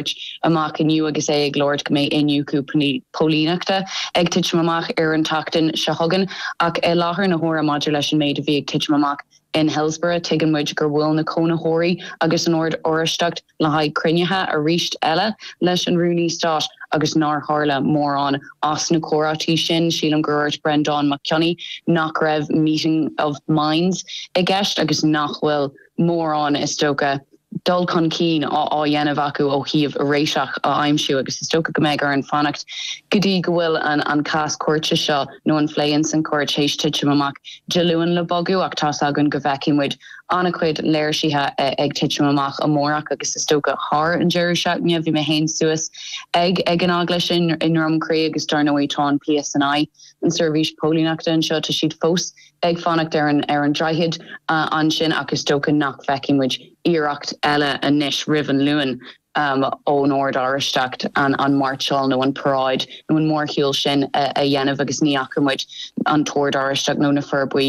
thabhairt amach inniu agus é ag labhairt go mbeidh Binse Póilíneachta ag titim amach ar an tseachtain seo chugainn ach i láthair na huaire maidir leis an méid a bhí ag titim amach in Hillsborough, tuigeann muid gur bhuail na cónaitheoirí agus an Ord Oraisteach le haghaidh cruinnithe arís eile leis an Rúnaí Stáit agus nár tharla mórán as na comhráití sin. Sílim gur dhúirt Brendán Mac Cionnaith nach raibh meeting of minds i gceist agus nach bhfuil mórán, is dócha, dul chun cinn á dhéanamh acu ó thaobh réiteach a aimsiú agus is dócha go mbeidh orainn fanacht go dtí go bhfuil an cás cúirte seo nó an phlé ins an chúirt théis titim amach Dé Luain le bogadh ach tá's againn go bhfeicfidh muid an-chuid léirsithe ag titim amach amárach agus is dócha thar an deireadh seachtaine. Bhí mé féin suas ag ag an eaglais i nDroim Crí agus dar ndóigh tá an PSNI, an tseirbhís póilíneachta anseo, tá siad fós i ag fanacht ar an ar an droichead ansin ach is dócha nach bhfeicfidh muid iarracht eile anois roimh an Luan ón Ord Oráisteach an mairseáil nó an paráid nó an mórshiúl sin a dhéanamh agus ní fhaca muid an tOrd Oráisteach nó na fir buí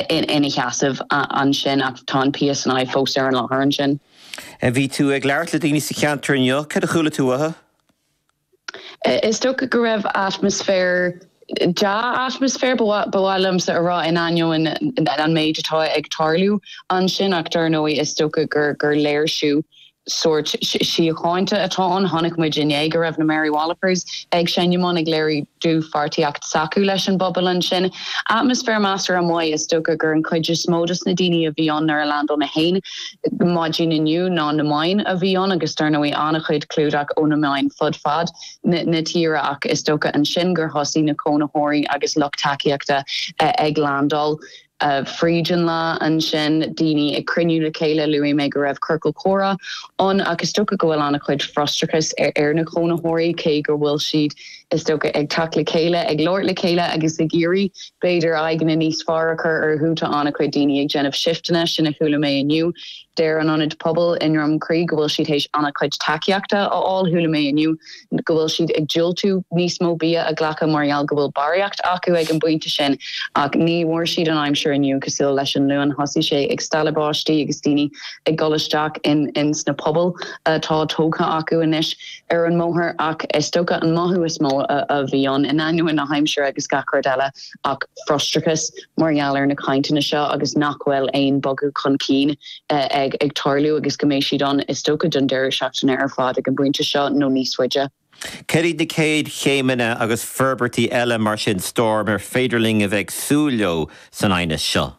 ina sheasamh ansin ach tá an PSNI fós ar an láthair ansin. Bhí tú ag labhairt le daoine sa cheantar inniu, cad a chuala tú uathu? Is dócha go raibh atmaisféar, deá-atmaisféar ba mhaith, ba mhaith liomsa a rá, in ainneoin an méid atá ag tarlú ansin ach dar ndóigh is dócha gur gur léirsiú sórt síochánta atá ann. Chonaic muid inné go raibh na Mary Wallopers ag seinm ann ag léiriú dlúthpháirtíocht s'acu leis an bpobal ansin. Atmaisféar measartha maith is dócha gur an chuid is mó dos na daoine a bhí ann nuair a leaindeáil mé féin. maidin inniu ná na meáin a bhí ann agus dar ndóigh an-chuid clúdach ó na meáin fud fad na tíre ach is dócha ansin gur thosaigh na cónaitheoirí agus lucht tacaíochta ag landáil fríd an lá ansin, daoine ag cruinniú le chéile, luaigh mé go raibh ciorcal comhrá ann ach is dócha go bhfuil an-chuid frustrachais ar na cónaitheoirí cé go bhfuil siad. is dócha, ag teacht le chéile, ag labhairt le chéile agus ag iarraidh b'fhéidir aghaidheanna níos fearr a chur orthu. Tá an-chuid daoine ag déanamh shifteanna, sin a chuala mé inniu. Deir an Ionad Pobail i nDroim Crí go bhfuil siad théis an-chuid tacaíochta a fháil. Chuala mé inniu go bhfuil siad ag diúltú níos mó bia a ghlacadh mar gheall go bhfuil barraíocht acu ag an bpointe sin. Ach ní bhfuair siad an aimsir inniu cosúil leis an Luan. Thosaigh sé ag stealladh báistí agus daoine ag dul isteach in sna pubaill atá tógtha acu anois. ar an mbóthar ach is dócha an mothú is mó a bhí ann, in ainneoin na haimsire agus gach rud eile, ach frustrachas mar gheall ar na cainteanna seo agus nach bhfuil aon bogadh chun cinn ag tarlú agus go mbeidh siad ann is dócha don deireadh seachtaine ar fad ag an bpointe seo nó níos faide. Céard iad na chéad chéimeanna agus forbairtí eile mar sin, Storm, ar féidir linn a bheith ag súil leo san aighneas seo?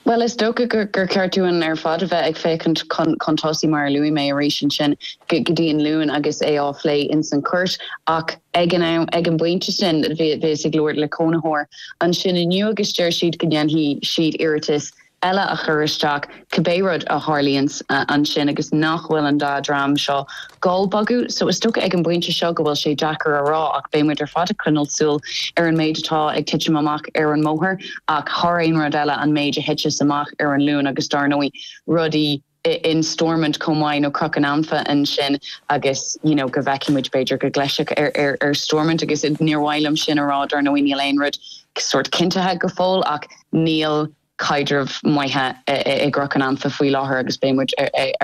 Bhuel, is dócha gur cheart dúinn ar fad a bheith ag féachaint chun tosaigh, mar a luaigh mé, arís ansin go dtí an Luan agus é á phlé ins an chúirt. Ach ag an am, ag an bpointe sin, bhíos ag labhairt le cónaitheoir ansin inniu agus deir siad go ndéanfaidh siad iarratas eile a chur isteach cibé rud a tharlaíonns ansin agus nach bhfuil an dá dhream seo ag dul ag bogadh so is dócha ag an bpointe seo go bhfuil sé deacair a rá ach beidh muid ar fad ag coinneáil súil ar an méid atá ag titim amach ar an mbóthar ach thar aon rud eile an méid a thiteas amach ar an Luan agus dár ndóigh rudaí in Stormont chomh maith nó Cnoc an Anfa ansin agus you know go bhfeicfidh muid b'fhéidir go gclisfeadh ar ar ar Stormont agus níor mhaith liom sin a rá dár ndóigh níl aon rud sórt cinntithe go fóill ach níl caidreamh maith i gCnoc an Anfa faoi láthair agus beidh muid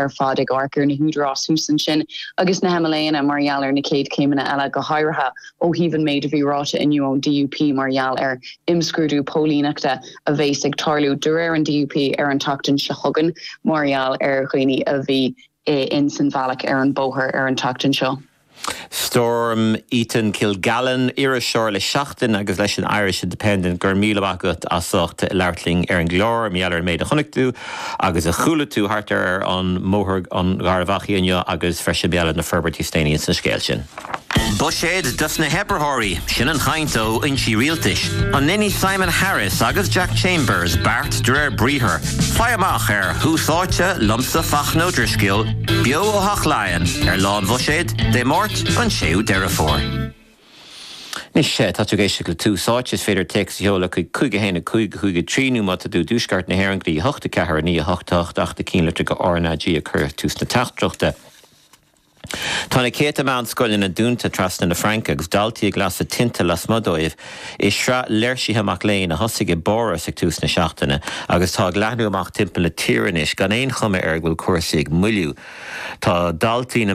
ar fad ag amharc ar na húdaráis thuas ansin agus na hMLAanna mar gheall ar na chéad chéimeanna eile, go háirithe ó thaobh an méid a bhí ráite inniu ón DUP mar gheall ar imscrúdú póilíneachta a bheas ag tarlú, de réir an DUP, ar an tseachtain seo chugainn mar gheall ar dhaoine a bhí ins an bhealach ar an bóthar ar an tseachtain seo. Storm Eaton-Kilgallen, iriseoir le Seachtain agus leis an Irish Independent, go raibh míle maith agat as ucht labhairt linn ar an gclár. Mar gheall ar an méid a chonaic tú agus a chuala tú thart ar ar an mBóthar an Gharbhachaidh inniu agus freisin mar gheall ar na forbairtí is déanaí insa scéal sin. Buiséad dos na hoibritheoirí, sin an chaint ó fhoinsí rialtais. An ndéanfaidh Simon Harris agus Jack Chambers beart de réir briathar? Faigh amach ar Thús Áite liomsa Fachtna Ó Drisceoil. Beo ó Theach Laighean ar Lá an Bhuiséid, Dé Máirt, an 6ú Deireadh Fómhair. Anois tá tú ag éisteacht le Tús Áite. Is féidir téacs a sheoladh chuig 515553 nó má tá tú i dTuaisceart na hÉireann, go dtí 84108 ach cinntigh go bhfuil RnaG ag cur tús na teachtaireachta. Tá na céadta meánscoileanna dúnta trasna na Fraince agus daltaí ag lasadh tinte lasmuigh díobh. I sraith léirsithe mac léinn a thosaigh i bPáras ag tús na seachtaine agus atá ag leathnú amach timpeall na tíre anois gan aon chuma air go bhfuil cúrsaí ag moilliú. Tá daltaí na.